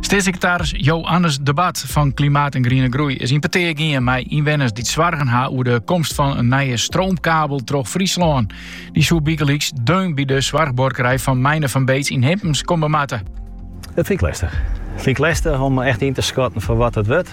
Steatssekretaris Jo-Annes de Bat fan Klimaat en Griene Groei is yn petear gien mei ynwenners dy't soargen ha oer de komst fan in nije stroomkabel troch Fryslân. Dy soe bygelyks deun by de soarchbuorkerij fan Meine van Beets yn Himpens komme moatte. Dat fyn ik lestich. Fyn ik lestich om echt yn te skatten foar wat it wurdt.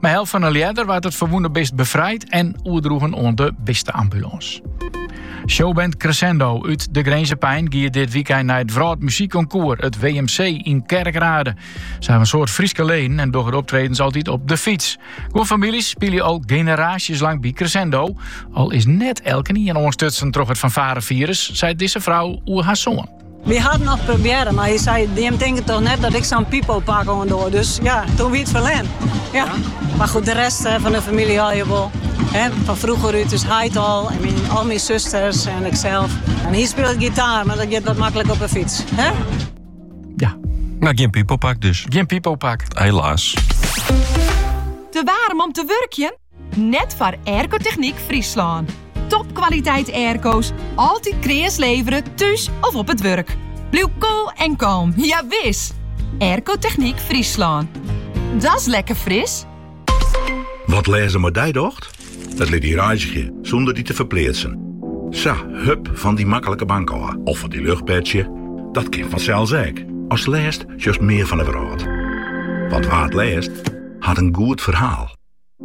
Mei help fan in ljedder waard it ferwûne bist befrijd en oerdroegen oan de bisteambulâns. Showband Crescendo út De Grinzer Pein giet dit wykein nei it Wrâld Muzykkonkoers, it WMC, yn Kerkrade. Se ha in soad Fryske leden en dogge optredens altyd op de fyts. Guon famyljes spylje al generaasjes lang by Crescendo, al is net elkenien oanstutsen troch it fanfarefirus, seit dizze frou oer har soan. Wy ha it noch probearre, mar hy sei, jim tinke toch net dat ik sa'n pipopak oandoch. Dus ja, toen wie it ferlern. Ja. Mar goed, de rest fan de famylje ha je wol. Hè, fan froeger út, ús heit al. En myn, al myn susters en iksels. En hy spilet gitaar, mar dat giet wat makkelik op in fyts. Hè? Ja. No, gjin pipopak dus. Gjin pipopak. Helaas. Te warm om te wurkjen? Net foar Aircotechniek Fryslân. Topkwaliteit airco's, altyd kreas levere thús of op it wurk. Bliuw koel en kalm, ja wis! Aircotechniek Fryslân. Dat's lekker Fris! Wat lêzen mei dy docht? It lit dy reizgje sûnder dy te ferpleatsen. Sa, hup fan dy maklike bank ôf of fan dy luchtbedsje. Dat kin fansels ek. As lêst sjochst mear fan 'e wrâld. Want wa't lêst, hat in goed ferhaal.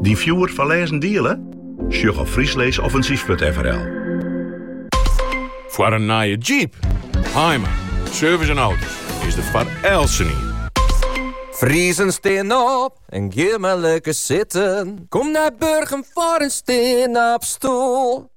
Dyn fjoer foar lêzen diele? Sjoch op friesleesoffensief.frl. Foar in nije Jeep, Haaima, Service en Auto's is der foar eltsenien. Friezen stean op en gean mar lekker sitten. Kom nei Burgum foar in stean-op-stoel.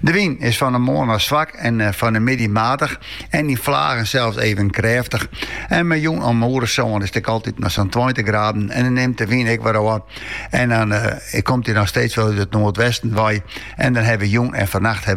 De wyn is fan 'e moarn ôf swak en fan 'e middei matich en yn flagen sels even krêftich. En mei jûn om oere sân is it ek altyd noch sa'n tweintich graden en dan nimt de wyn ek wer ôf. En dan komt dy noch steeds wol út it noardwesten wei en dan ha we jûn en fernacht